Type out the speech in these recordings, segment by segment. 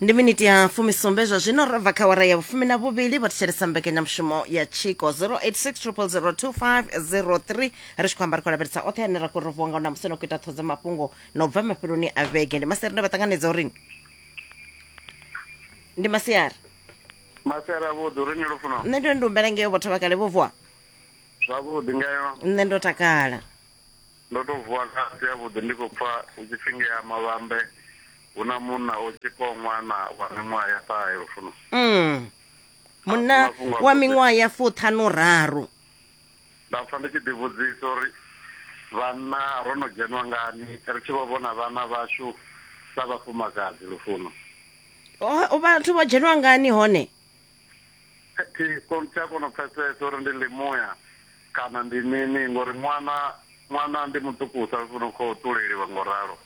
ndi miniti ya fumisumbe zwa zwino ro bva kha wara ya vhufumi na vhuvhili vho thetshelesa mbekanyamushumo ya tshiko 08600023 ri tshi khou amba ri khou lavhelesa oṱhe ane ra khou ri vhonga na musi no khou ita ṱhodzo mafhungo na u bva mafheloni a vhege ndi masiari nda vha ṱanganedza uri ndi masiari masiara vhuḓi uri ni lufuno nṋe ndo ndi humbela ngeo vhotho vha kale vho vuwa zwavhuḓi ngayo nṋe ndo takala Ndo tou vuwa nga a si avhuḓi ndi khou pfa hu tshi pfi ngea Mavhambe hu na munna o tshifhaho ṅwana wa miṅwaha ya ṱahe Lufuno. Umm. Munna wa miṅwaha ya fuṱhanu raru. Nda pfa ndi tshi ḓi vhudzisa uri vhanna ro no dzhenwa ngani ri tshi vho vhona vhana vhashu sa vhafumakadzi Lufuno. Vhathu vho dzhenwa ngani hone? thi kon tsha kona u pfesesa uri ndi limuya kana ndi mini ngori ṅwana ṅwana ndi muṱukusa u funa khou ṱuleliwa ngo ralo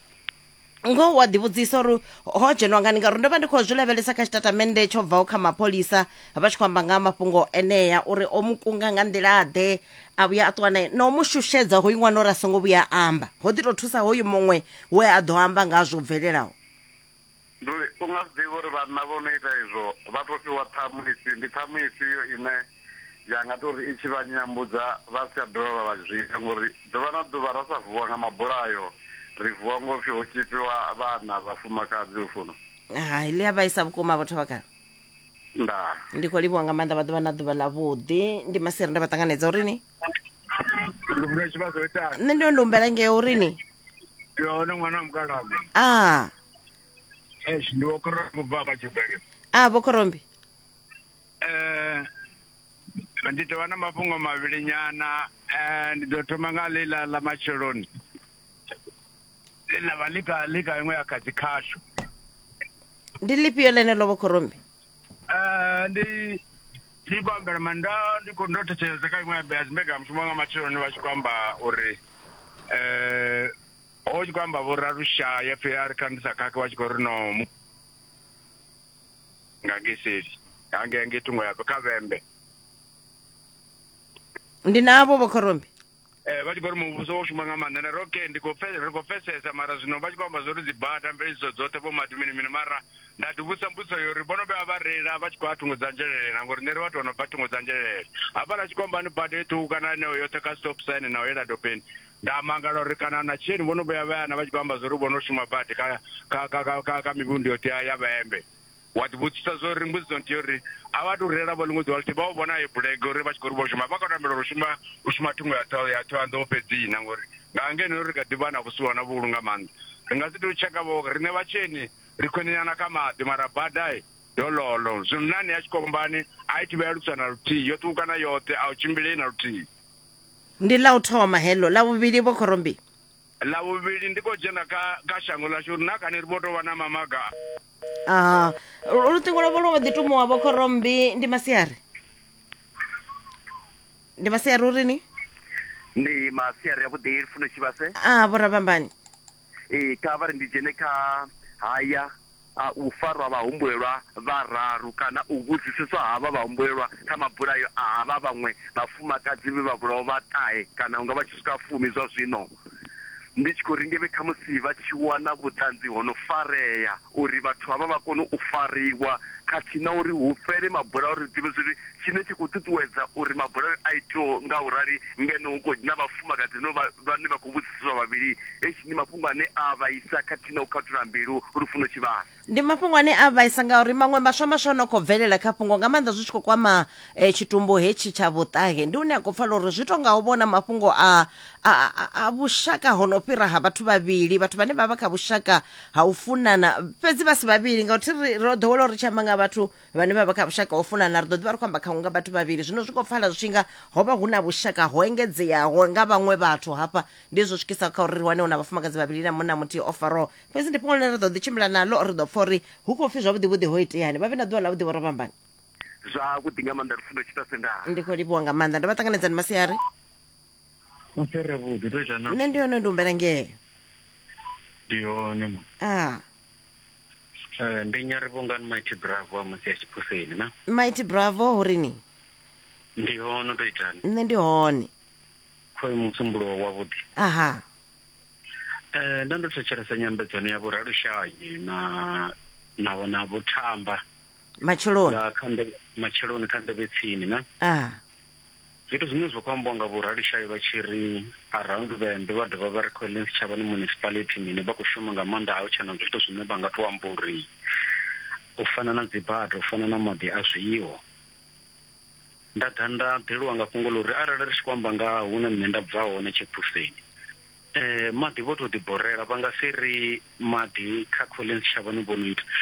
ngoho wa ḓivhudzisa uri ho dzhenwa ngani ngauri ndo vha ndi khou zwi lavhelesa kha tshitatamennde tsho bvaho kha mapholisa vha tshi khou amba nga mafhungo enea uri o mu kunga nga nḓila ḓe a vhuya a ṱuwa nae na u mu shushedza hoyu ṅwana uri a songo vhuya a amba ho ḓi tou thusa hoyu muṅwe we a ḓo amba nga zwo bvelelaho Ndi uri u nga zwi ḓivhi uri vhanna vho no ita izwo vha tou fhiwa ṱhamu ifhio, ndi ṱhamu ifhio ine ya nga tou ri i tshi vha nyambudza vha si tsha dovha vha vha zwi ita ngauri ḓuvha na ḓuvha ra sa vuwa nga mabulayo ri vuwa ngo pfi ho tzhipiwa vhana vhafumakadzi Lufuno. Hai, ḽi a vhaisa vhukuma vho Thabakalo. Ndaa. Ndi khou livhuwa nga maanḓa vha ḓuvha na ḓuvha ḽa vhuḓi ndi maseri nda vha ṱanganedza uri ni. ndi funa tshivhadzo itani nṋe ndo ndo humbela ngeo uri ni yone ṅwana wa mukalama a es ndi wo kora kubva kha tshibele a vho khorombi eh ndi tovha na mafhungo mavhili nyana eh ndi ḓo thoma nga ḽiḽa ḽa matsheloni ḽiḽa vha ḽika ḽika iṅwe ya kha dzi khashu ndi lifhio ḽeneḽo vho khorombi Eh, ndi ndi khou ambela manda ndi khou ndo thetshelesa kha iṅwe ya dzimbeka mushumo wanga matsheloni vha tshi khou amba uri eh ho tshi khou amba vho ralushaya pfhi a ri kha ndi sa khakhe vha tshi khou ri no mu- nga ngeseli hange hange thungo ya kha vhembe ndi navho vho khorombi Eh, vha tshi khou ri muvhuso wo shuma nga maanḓa ndari okay ndi khou ri khou pfesesa mara zwino vha tshi khou amba zwo ri dzi bada mveledziso dzoṱhe vho mati mini mini mara nda ḓi vhusa mbudziso yo uri vho no vhuya vha reila vha tshi khou a thungo dza nzhelelela ngori nṋe ri vhathu vha no bva thungo dza nzhelelela hafha ḽa tshikombani bada eṱhuku kana eneo yoṱhe kha stop sign na u yela dopeni nda mangala uri kana na tsheni vho no vhuya vha yana vha tshi khou amba zwo ri vho no shuma badi kha kha kha kha kha mivhundu yoṱhe ya vhaembe Wa ḓivhudzisa zwa uri mbudziso nthihi uri a vha tou reila vho ḽiṅwe ḓuvha ḽithihi vha u vhona he bulege uri vha tshi khou ri vho shuma vha khou tambela uri u shuma u shuma thungo ya ṱhoho ya Thohoyanḓou fhedzi na ngori nga ngeno ri kha ḓi vha na vhusiwa na vhuhulu nga maanḓa ri nga si tou tsheka vho riṋe vhatsheni ri khwiṋenyana kha maḓi mara bada dololo zwimnani ya tshikombani a i thivhela lusa na luthihi yo ṱukukana yoṱhe a u tshimbilei na luthihi ndi ḽa u thoma heḽo ḽa vhuvhili vho khorombi Ḽa vhuvhili ndi khou dzhena kha kha shango ḽashu uri na kani ri vho tou vha na mamaga. Aha. Lu- Luṱingo lwavho lwo vha ḓi tumuwa vho khorombi ndi masiari. Ndi masiari uri ni? ndi masiari avhuḓi lufuno tshivhase Ah, vho Rabambani. ee kha vha ri ndi dzhene kha haya a u farwa vhahumbulelwa vhararu kana u vhudziseswa ha vha vhahumbulelwa kha mabulayo a ha vha vhaṅwe vhafumakadzi vhe vha vhulawa vha ṱahe kana hunga vha tshi swika fumi zwa zwino. Ndi tshi khou ri ngevhe khamusi vha tshi wana vhuṱanzi ho no farea uri vhathu havha vha kone u fariwa khathihi na uri hu fhele mabulayo ri ḓivhe zwa uri tshine tsha khou ṱuṱuwedza uri mabulayo a itweho nga u rali ngeno hu khou dzhena vhafumakadzi no vha vhane vha khou vhudziseswa vhavhili eish ndi mafhungo ane a vhaisa khathihi na u khathula mbilu lufuno tshivhasa. Ndi mafhungo ane a vhaisa ngauri maṅwe maswa maswa no khou bvelela kha fhungo nga maanḓa zwi tshi khou kwama eh, tshitumbu hetshi tsha vhuṱahe ndi hune a khou pfala uri zwi tou nga u vhona mafhungo a, a, a, a vhushaka ho no fhira ha vhathu vhavhili vhathu vhane vha vha kha vhushaka ha u funana fhedzi vha si vhavhili ngauri thi ri ro ḓowela uri tshi amba nga vhathu vhane vha vha kha vhushaka ho funana ri ḓo ḓivha ri khou amba kha unga vhathu vhavhili zwino zwi khou pfala zwi tshinga ho vha hu na vhushaka ho engedzeaho nga vhaṅwe vhathu hafha ndi zwo swikisa kha uri ri wane hu na vhafumakadzi vhavhili na munna muthihi o faraho fhedzi ndi fhungo ḽine ra ḓo ḓi tshimbila naḽo ri ḓo pfa uri hu khou pfi zwavhuḓivhuḓi ho iteani vha vhe na ḓuvha ḽa vhuḓivho ro vhambani zwavhuḓi nga maanḓa lufundo tshita sendaa ndi khou livhuwa nga maanḓa ndo vha ṱanganedzani masiari masere vhuḓi to ita na nṋe ndi hone ndi humbela ngeo ndi hone ma ah Eh, ndi nyarivhungani mighty bravo a musi ya tshiphuseni na mighty bravo hu ri ni ndi hono to itani nṋe ndi hone khoyu musumbulo wavhuḓi aha um nda ndo thetshelesa nyambedzano ya vhoralushanyi na na vho- na vho thamba matsheloni nga kha nḓevhe matsheloni kha nḓevhe tsini na aha Zwithu zwiṅwe zwo khou ambiwa nga Vho Ralishayi vha tshi ri Around Vhembe vha dovha vha ri Collins Tshavhani Municipality mini vha khou shuma nga maanḓa a hu tshe na zwithu zwine vha nga tou amba uri u fana na dzibada, u fana na maḓi a zwiho. Nda ḓa nda ḓeliwa nga fhungo ḽa uri arali ri tshi khou amba nga hune nṋe nda bva hone Tshephuseni maḓi vho tou ḓiborela vha nga si ri maḓi kha Collins Tshavhani vho no ita